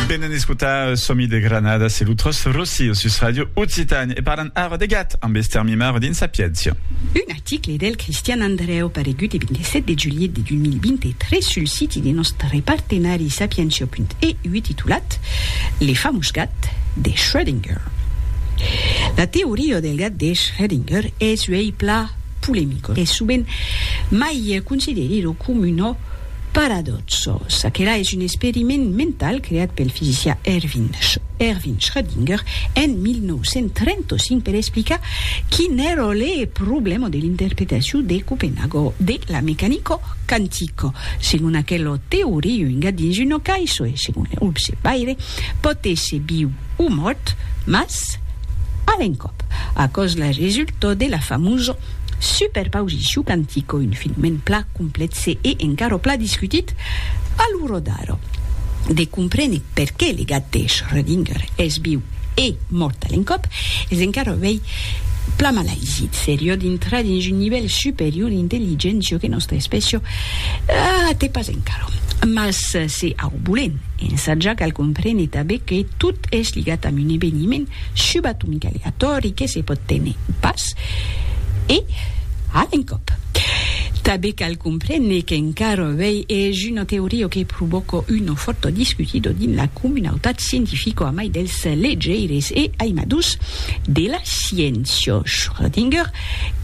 Venen escotar Somi de Granada, se lo Tros Rossi o sus Radio Occitan e parlan ara de gat amb Esther Mimaro dins Sapiéncia. Un article del Cristian Andrèu paregut e 27 de julhet de 2023 sul siti de nòstre partenari Sapientia.eu titulat Le famós gat de Schrödinger. La teoria del gat de Schrödinger es uèi plan polemicor e sovent mai considerida com una Paradòxo. Çaquelà es un experiment mental creat pel fisicià Erwin Erwin Schrödinger en 1935 per explicar quin èra le problèma de l'interpretacion de Copenhago de la mecanico quantico. Segon aquela teoria, un gat dins una caissa e, segon le observaire, pòt èsser viu o mòrt, mas a l'encòp, aquò's la resulta de la famosa Super pausi shu cantico un filmen pla complètse e encaro pla discutit a lo rodaro de comprene perqué le gat de Schrödinger es viu e mort a l'encòp es encaro vei pla malaisit serio d'intrar dins un nivèl superior d'intelligéncia que nòstra espècia a te pas encaro mas se au bolen ensatjar cal comprene tabé que tot es ligat amb un eveniment subatomicaleatòri que se pòt tene pas E, a l'encòp. Tanben cal comprene qu'encara avèi es una teoria que provòca una fòrta discutida dins la comunautat scientifica a mai dels legeires e aimadors de la sciéncia. Schrödinger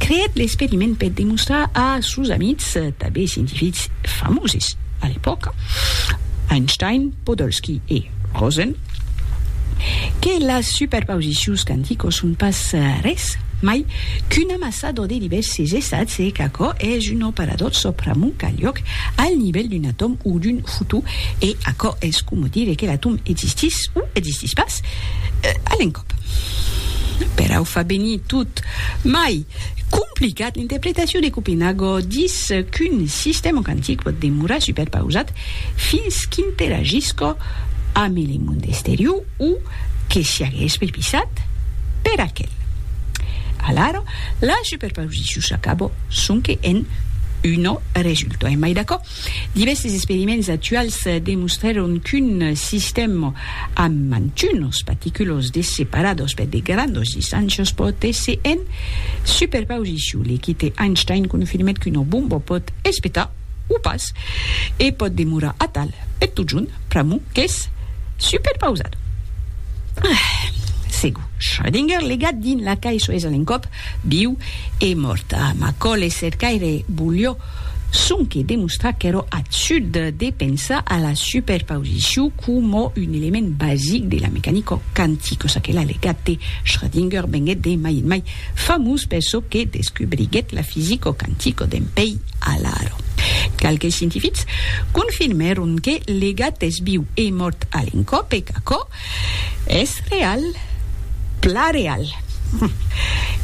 creèt l'experiment per demostrar a sos amics, tanben scientifics famoses a l'epòca, Einstein, Podolsky e Rosen, que las superpausicions quanticos son pas res mai qu'un amassador de divèrses estats e qu'aquò es un operador sòpramont calhòc al nivèl d'un atòm o d'un fotó e aquò es coma dire que l'atòm existís o existís pas a l'encòp. Per au far venir tot mai complicat, l'interpretacion de Copenhago dis qu'un sistèma quantic pòt demorar superpausat fins qu'interagisca amb le monde exterior o que siagues pripisat per aquel. Alara, la superposicion s'acaba sonque en un resultat. Emai d'aquò, divèrses experiments actuals demostrèron qu'un sistèm amb mantunos particulos de separados per de grandos distàncias pòt èsser en superposicion. L'equite Einstein confirmèt qu'una bomba pòt espetar o pas, e pòt demorar atal per totjorn, pr'amor qu'es superpausat. Ah! Segur, Schrödinger, legat dins la cai soes a l'encòp, viu e mòrt. Ah, Macaulay cercaire volió sonque demostrar qu'èra absurd de pensar a la superpausicion coma un element basic de la mecanica quantica, çaquelà legat de Schrödinger venguèt de mai en mai Famós per çò que descubriguèt la fisico quantico d'en Pei Alaro. Qualques scientifics confirmèron que le gat es viu e mòrt a l'encòp e qu'aquò es real, plan real.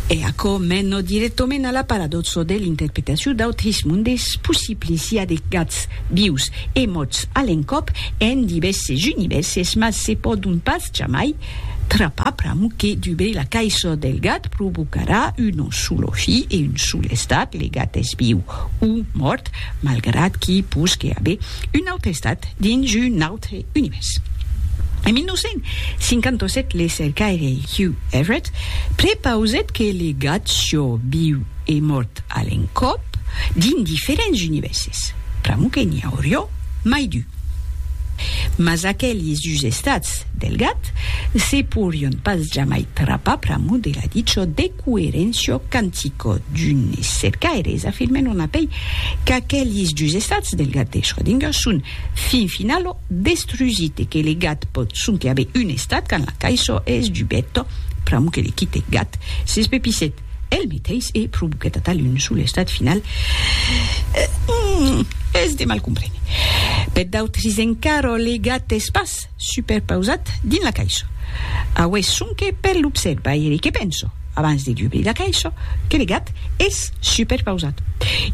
E aquò mena dirèctament a la paradòxa de l'interpretacion d'autres mondes possibles, i a de gats vius e mòrts a l'encòp en divèrses univèrses, mas se pòdon pas jamai Trapapram que dubei la caisson del gat provocarà un solo fi e un sol estat, le gat es viu o mòrt, malgrat qu'i posque aver un aute estat dins un aute univèrs. En 1957 le cercaire Hugh Everett prepausèt que le gat sió viu e mòrt a l'encòp dins diferents univèrses, pr'amor que n'i aurió mai d'un. Mas aquelis dus estats del gat, se pourrion pas jamai trapar pr'amor de la dicho de coerencio cantico d'unes cercaires afirmen on apei qu'aquelis dus estats del gat de Schrödinger son fin finalo destrusit e que le gat pòt sonque aver un estat quand la caisho es dubèto pr'amor que le quite gat s'espepissèt el meteis e provoquèt atal un sol estat final es de mal comprene per d'autres encara le gat es pas superpausat dins la caisha. Aué sonque per l'observaire que penso, abans de dubrir la caisha, que le gat es superpausat.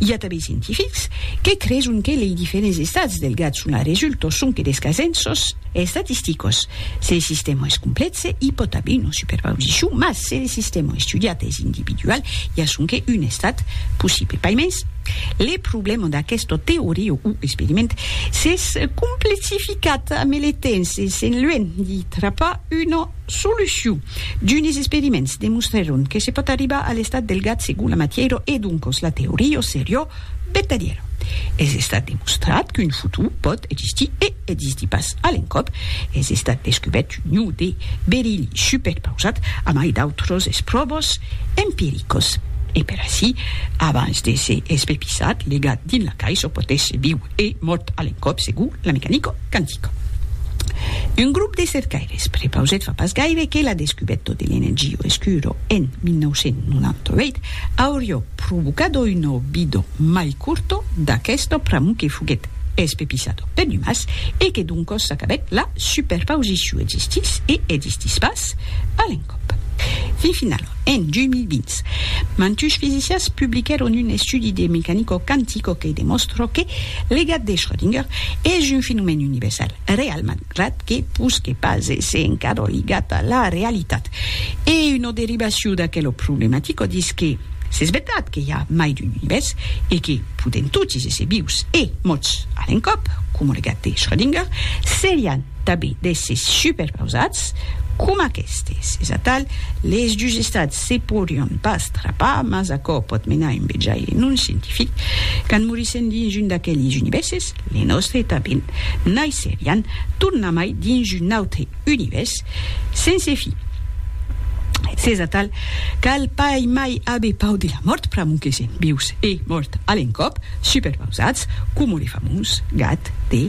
I a tanben scientifics que creson que lei diferents estats del gat son a resulto sonque des casenços estatisticos. Se le sistèma es complètze, i pòt aver una superpausicion, mas se le sistèma estudiat es individual, i a sonque un estat possible. Paimens, le problèma d'aquesta teoria o experiment s'es complexificat. Quat militents de Sent Luèn i trapar una solucion. D'unes experiments demostrèron que se pòt arribar a l'estat del gat segon la matièra e doncas la teoria seriá vertadièra. Es estat demostrat qu'un futur pòt existir e existir pas a l'encòp. Es estat descubèrt un ion de berili superpausat a mai d'autras espròvas empiricas. E per aicí, abans d'èsser espepissat, legat dins la caissa, pòt èsser viu. E mot a l'encòp segur la mecanica quantica. Un grop de cercaires prepausèt fa pas gaire que la descubèta de l'energia escura en 1998 auriá provocada una vida mai corta d'aquesta pr'amor que foguèt espepissada per l'umàs e que doncas s'acabèt la superpausiciu existís e existís pas a l'encòp. Fin finala. En 2020, mantuns fisicians publiquèron un estudi de mecanica quantica que demòstra que le gat de Schrödinger es un fenomèn universal, real malgrat que pus que pas èsser encara ligat a la realitat. E una derivacion d'aquela problematica dis que s'es vertat que i a mai d'un univèrs e que podèm totis èsser vius e mòrts a l'encòp, coma le gat de Schrödinger, serián Tabi d'èsses superpausats coma aquestes. Es atal, les dus estats se porion pas trapar, mas aquò pòt menar un vejaire non scientific, quand morissèn dins un d'aqueles univèrses, le nòstre tanben, naisserián tornamai dins un autre univèrs sense fi. S'es atal, cal pas mai aver pau de la mòrt pr'amor que sèm vius e mòrt a l'encòp, superpausats coma le famós gat de